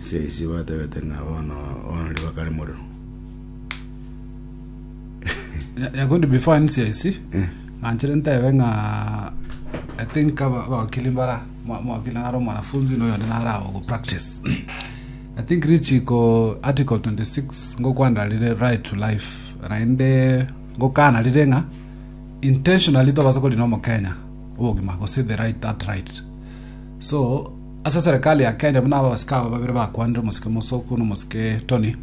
Esisi batebete ng'a bono bono riba kare morero. Nya- nyakundi before anisia isi Eh. nanchere ntebe ng'a i think aba- abawakili mbara mwa- mwawakili nare omwanafunzi na oyonde nare awo go practice i think richiko article 26 ngokwana rire right to life naende ngokana rire ng'a intentionally tobasa korina omokenya obogima gose the right that right so Ase eserekari ya Kenya buna abasike aba babere bakwanire omosike Musoku na omosike Tony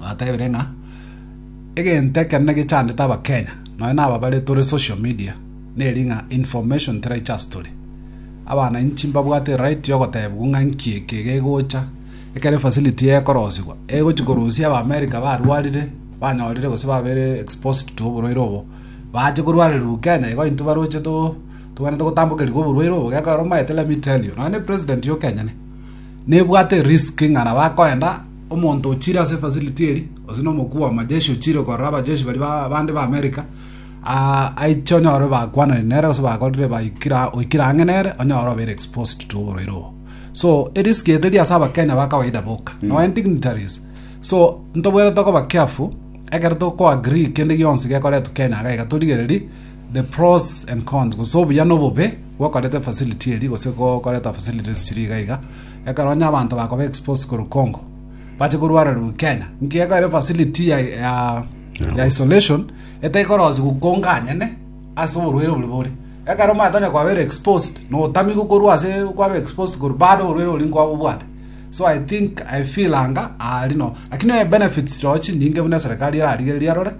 batebire ng'a egento ekenene gechandete abakenya nonya na aba bare tore social media neri ng'a information teraicha ase tore abana inchi mbabwate right yogotebigwa ng'a nki eke gegocha ekere facility ekorosigwa egochi korusia aba America barwarire banyorire gose babere exposed to oborwaire obo bache korwarerwa Kenya igo intwe baroche to Tobwenerete gotambokerigwa oborwaire obo gekogera omaete let me tell you nonya ne president yo Kenya ne nebwate risk ng'a nabo akoenda omonto ochire ase facility eri gose na omokuu wa majeshi ochire korora abajeshi bari bande ba America aiche onyore bakwanani nere gose bakorire baikira oikire ang'e nere onyore obere exposed to oborwaire obo so erisk eteri ase abakenya ba kawaida boka mm. nonya dignitaries so ntobwenerete koba careful ekero tokoagree kende gionsi gekoretwa Kenya gaiga torigereri The pros and cons, gose obuya na obobe gokoreta efacility eri gose gokoreta facilities chiri iga iga. Ekero onye abanto bakoba exposed korwa Congo, bache korwarerwa Kenya. Nki ekero facility ya, ya, ya isolation etekorosi gukonga anyene ase oborwaire bori bore. Ekero omanyete onye kwabere exposed, notami gokorwa ase kwaba exposed korwa bado oborwaire oria nkwaba obwate. So I think, I feel anga ari no. Lakini benefits rochi nyinge buna eserekari erarigereria arore,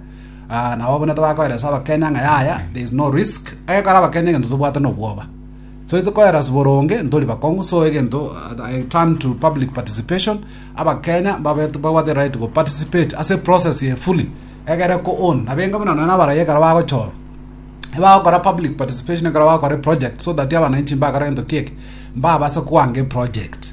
Aa, nabo buna tobakoeresa abakenya ng'a yaya, there is no risk, ekero abakenya egento tobwate nobwoba. So tikoeras boronge, ntori bakong'u, so egento I turn to public participation, abakenya babe babwate right go participate ase process eye fully, egere ko own, nabo enga buna nonye na abarai ekero bagochorwa, ebagokora public participation ekero bagokora eproject so that abananchi mbakora egento kiekio, mbabase koanga eproject.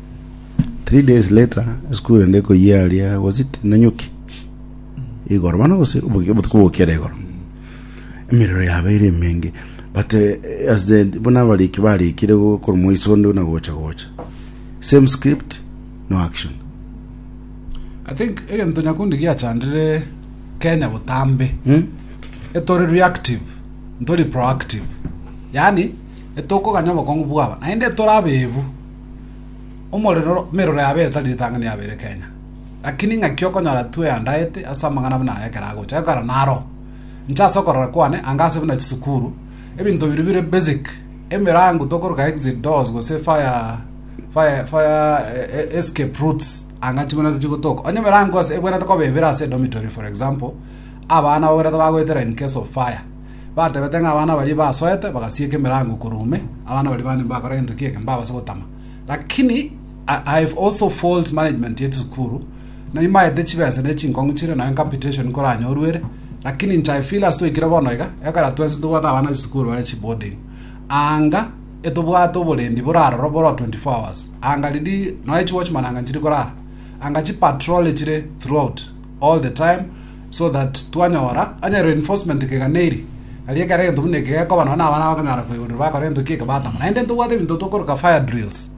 Three days later, esukuru ende ekoyia aria, was it Nanyuki? Igoro, bana gose obuki- obotuko bokera igoro. Emerero yabeire emenge. But eh, as the, buna abariki barikire gokora moiso onde na gocha gocha. Same script, no action. I think egento nyakundi giachandire Kenya botambe Hmm? etori reactive ntori proactive yani etokoganya obokong'u bwaba naende etori abebu Omorero, emerero yabere tari ritang'ani yabere Kenya. Lakini ng'aki okonyora tu eandaete ase amang'ana buna aya ekero agocha gokora naro. Inche ase okorora kwane, anga ase buna chisukuru, ebinto biria bire basic, emerango tokoruka exit doors gose fire fire fire eh, escape routes anga chimwenerete chigotoka. Onye emerango ase ebwenerete koba ebere ase dormitory for example, abana baberete bagoetera in case of fire. Batebete ng'a abana baria basoete bagasieka emerango korwa ime, abana baria bane mbakora gento ki'ekemo mbabase gotama. Lakini I I have also fault management ya chisukuru, naimaete chibesa ne chinkong'u chire nonya capitation nkoranyorwe ere, lakini inche I feel as twaikire bono iga, ekero twensi tobwate abana ba chisukuru bare chiboarding, anga etobwate oborendi bore aroro bore 24 hours, anga riri nonya chiwatchman anga nchiri korara, anga chipatrole chire throughout all the time, so that twanyora onye reinforcement kegana eri ari ekero egento buna eke gekoba nonya abana bakonyara koigurira bakora egento kieke batama naende ntobwate ebinto tokoroka fire drills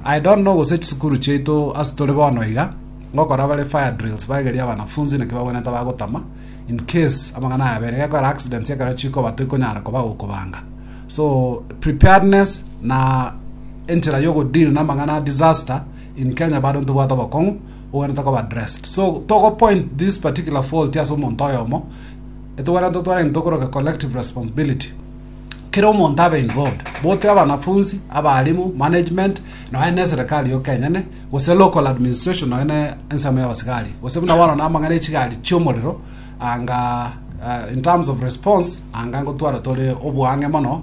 i don't know gose chisukuru chiaito ase tore bono iga ngokora bare fire drills baegeria abanafunzi naki babwenete bagotama in case amang'ana aya abere gekora accidents ekero chikoba toikonyara koba gokobanga so preparedness na enchera yogodeal na amang'ana a disaster in kenya bado ntobwate obokong'u Togwenerete koba dressed. So togo point this particular fault ase omonto oyomo, etogwenerete twarenge tokoroke collective responsibility. Kera omonto abe involved, bote abanafunzi, abarimu, management, nonya ne serikali yoka enyene, gose local administration nonya ne ensemo ya abasigari. Gose buna bono namang'ana echigari chi'omorero, anga uh, in terms of response, anga ngotwara tore oboang'e mono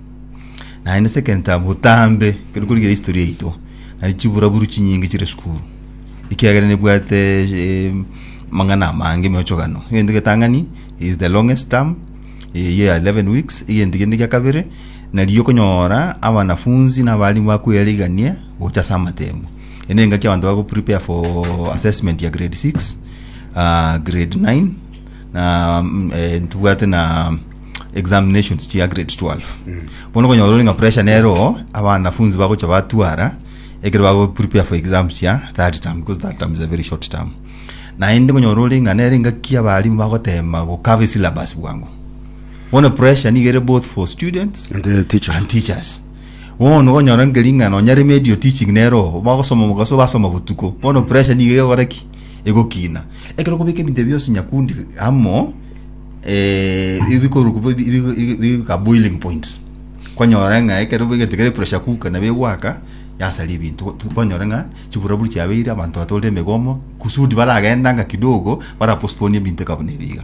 Naende sekenta botambe kero korigereria history yaito nari chiburaburu chinyinge chire sukuru ekiagera nebwate eh, mang'ana amange emeochogano egento getang'ani is the longest term eh, year 11 weeks egento kende gia kabere nariyo okonyora abanafunzi na abarimu bakweyarigania gocha ase amatemo ene engaki abanto bago prepare for assessment ya grade 6 ah, grade 9 na mm, eh, ntibwate na examinations chia grade 12 bono konyora ore ng'a pressure nero abanafunzi bagocha batwara ekero bago prepare for exam chia third term because third term is a very short term naende konyora ore ng'a nere ngaki abarimu bagotema gokaba esyllabus bwango bono pressure nigo ere both for students And the teachers. and teachers bono konyora nkering'ana onya remedio teaching nero bagosoma mogaso basoma botuko bono pressure nigo egokora ki egokina. Ekero okobeka ebinto ebio bionsi nyakundi amo, eh, ebikorokwa bo- bi- bi- bigika boiling point. Kwanyora ng'a ekero egento kere pressure cooker nabo egwaka, yasaria ebinto. Go- Kwanyora ng'a chiburaburi chiabeire, abanto batore emegomo, kusudi baragendanga kidogo, bara postpone ebinto eka buna ebi iga.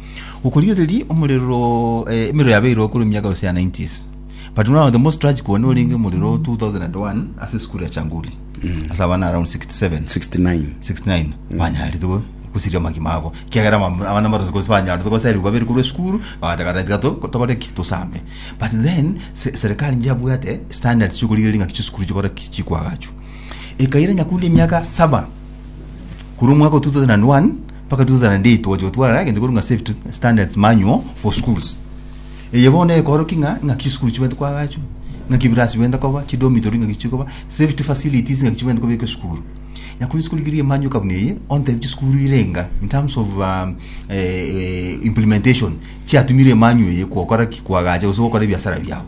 Gokorigereria omorero eh, emerero yabeirwe korwa emiaka gose ya 90s but now the most tragic one orenge omorero 2001 ase esukuru ya changuri ase abana around 67 69 69 banyaritwe gusiria amagima abo kiagera mam- abana barosi gose banyaritwe goserigwa babere korwa esukuru bagataka renti gato tokore ki tosambe but then se- serikali inche yabwate standards chiokorigereria ng'aki chisukuru chikore ki chikwagachwa ekaira nyakundi emiaka saba korwa omwaka wa 2001 Mpaka 2008 twagocha gotwara egento korwa ng'a Safe Standards Manual for Schools. Eye bono ekorokigwa ng'a ng'aki chisukuru chibwenerete koagachwa, ng'aki ebirasi bibwenerete koba, chidormitory ng'aki chichie koba, safety facilities ng'aki chibwenerete kobekwa esukuru. Na korwa chisukuru chiri emanyoka buna eye, ontebie chisukuru irenga in terms of um, eh, eh, implementation chiatumire emanyo eye kwokora ki kwagacha gose gokora ebiasara biabo.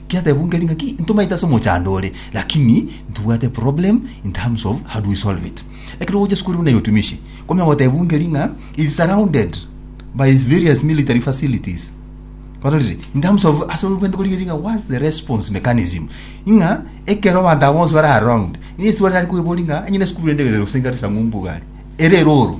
Kiatebwa nkeri ngaki ntomaete ase omochando ore lakini ntibwate problem in terms of how do we solve it. Ekero ogochia sukuru buna ya otumishi kwamanya gotebwa nkeri ng'a it's surrounded by various military facilities barorire in terms of ase obwente korigia eri ng'a what's the response mechanism ng'a ekero abanto aba bonsi bare around ng'a eswali nari koebori ng'a onye ne sukuru ende ere gose nkarisang'o mbuga are ere eroro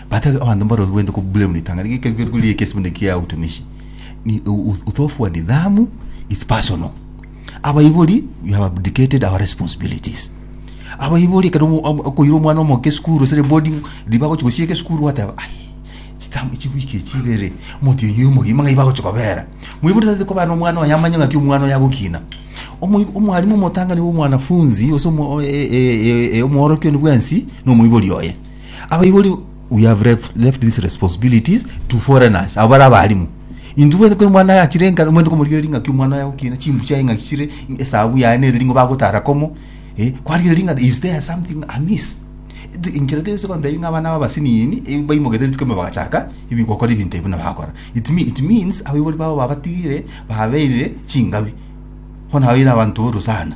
Batari abanto mbarorwente kobua mu ritang'ani rigekerigwe riria ekiesibani kia utumishi ni uthofu wa nidhamu is personal abaibori you have abdicated our responsibilities abaibori ekero omo- omo- okoira omwana omoke esukuru esere boarding riba agochi gosieka esukuru wateba ai chitambo chiwiki echi ibere omotienyi oyo omogima ng'ai bagochi kobera moibori tari kobana na omwana oye amanye ng'aki omwana oye agokina Omoib- omwarimu omotang'ani bwa omwanafunzi gose omo- o- e- e- e- omoorokia one bwensi na omoibori oye Abaibori we have left, left these responsibilities to foreigners abo bare abarimu intu bwene kori mwana aye achire enkana omanyete komorigereria ing'aki omwana aye agokina chimbu chiaye ng'aki chire esabu yaye nere ring'o bagotara komo eh, kwarigereria ng'a is there something amiss Th- inchera tese kontebia ng'a abana aba abasinini eh, baimogete rituko ime bagachaka ibi gokora ebinto ebi buna bagakora it, mean, it means abaibori babo babatigire babeire chingabi bono abaire abanto boru sana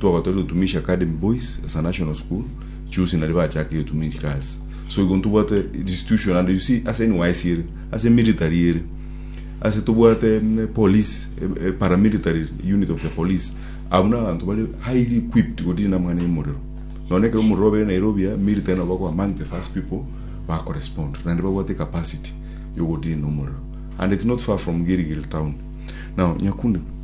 twagotoreire Utumishi Academy Boys as a national school, Chusi naria bachakeire Utumishi Girls. So igo ntobwate institution and you see ase NYSC ere, ase military ere, ase tobwate mm, police, eh, eh, paramilitary unit of the police. Abo n'abanto bari highly equipped godiri namang'ana y'omorero. Nonye ekero omorero obeire Nairobi ya, military nabo bakoba among the first people bakorespond, naende babwate ecapacity yogodiri nomorero. And it's not far from Gilgil town. Now, Nyakunde,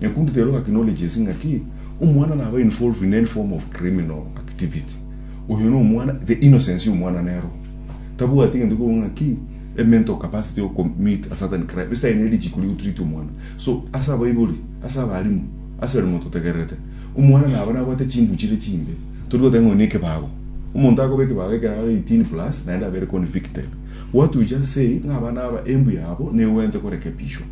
Nyaku onde tero acknowledges ng'a ki, omwana naba involved in any form of criminal activity. Oyo no omwana, the innocence ya omwana nero. Tabwati egento kobua ng'a ki, a mental capacity yo commit a certain crime, ase tari nerichiko ria gotreat omwana. So, ase abaibori, ase abalimu, ase barimo totegererete, omwana naba nabwate chimbu chire chimbe, tori goteba ng'a oyo nekebago. Omonto akoba ekebago ekero are eighteen plus, naende abere convicted. What we just say, ng'a abana aba embu yabo negwenerete korekebishwa.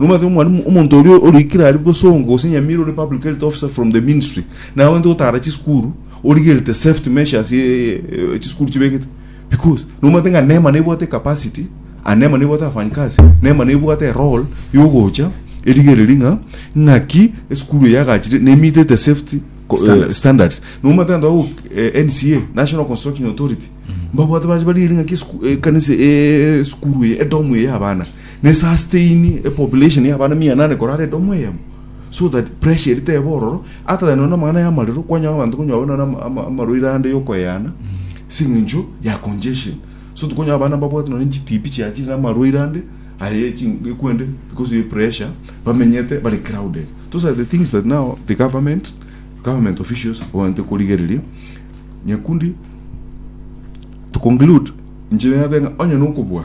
Nomanyete ng'a Mwalimu, omonto oria oriikire aria bosongo, gose nyamira ore public health officer from the ministry, naye abwenerete gotaara chisukuru, origerete safety measures eh, eh, eh, chisukuru chibegete. Because nomanyete ng'a nema nebwate capacity, ah, nema nebwate abafanyikazi, nema nebwate role yogocha erigereri ng'a ng'aki esukuru eye yagachire nemitete safety co- eh, Standards. standards nomanyete anto ago eh, NCA National Construction Authority mbabwate bache barigeri ng'aki esuku- eh, kanisa eh, esukuru eye edomu eye abana Ne sustain a population ya abana mia inane korara edomo eyemo so that pressure eri tebe ororo ata than none amang'ana y'amarero kwanyora abanto konywa babe none ama- ama- amarwaire ande yokoyana sing'incho ya congestion so tokonywa abana babwate none chitibi chia chire amarwaire ande aye echi- ekwende because ye pressure bamenyete bari crowded those are the things that now the government government officials babwenerete korigereria nyakundi to conclude inche nabe ng'a onye nokobua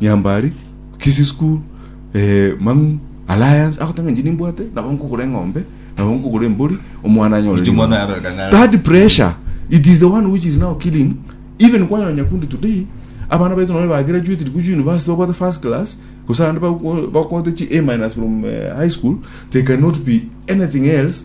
Nyambari, Kisii School, eh, Mang'u, Alliance, agoteba ng'a inche nimbwate, nabo nkogora eng'ombe, nabo nkogora embori, omwana anyore Inche omwana rigoro. oyaroreka ng'a- That pressure, it is the one which is now killing, even kwanyola Nyakundi today, abana baito nabo bagraduated korwa university babwate first class, gose naende bago- bagote chi A minus from eh, high school, they cannot be anything else,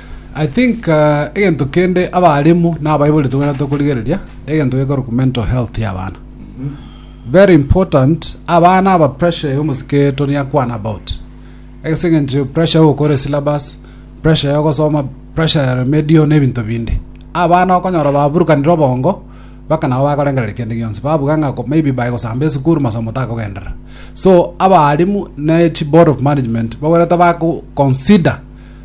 I think egento kende abaalimu nabaibori tobwenerete tokorigereria egento gekorokwa mental health ya abana very important abana aba pressure ya omosike toni akwana about egese engencho pressure ya ogokora esyllabus pressure ya ogosoma pressure ya remedial na ebinto binde abana okonyora baburukanire obongo mpaka nabo bakorengereria kende gionsi babuga ng'a ko- maybe baye gosamba esukuru masomo takogenderera so abaalimu ne chiboard of management babwenerete bako consider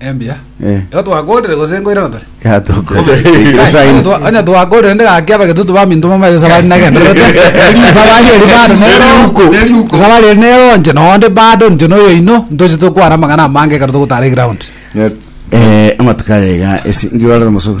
Embia. Eh. Ero twakorire gose nkoirana tore. Yatukwesaini. Onye twakorire ndi gaki abagetutu ba minto mama yesa bari nagenderete. Sabari eri bado nero. Neruko. Neruko. Sabari eri nero nche nonde bado nche noyo ino ntoche tokwana amang'ana amange ekero togotara eground. Eh, amatuko ayaiga ase ngirwarire mosogo.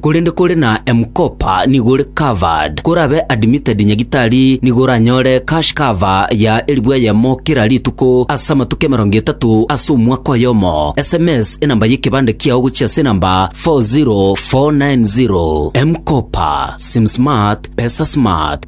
Korende kore na M-Kopa nigo ore covered. Korabe admitted nyagitari nigo oranyore cash cover ya elifu eyemo kera rituko ase amatuko emerongo etato ase omwaka oyomo. Sms enamba y'ekebande kiao gochia ase enamba 40490. M-Kopa, Sim Smart, Pesa Smart.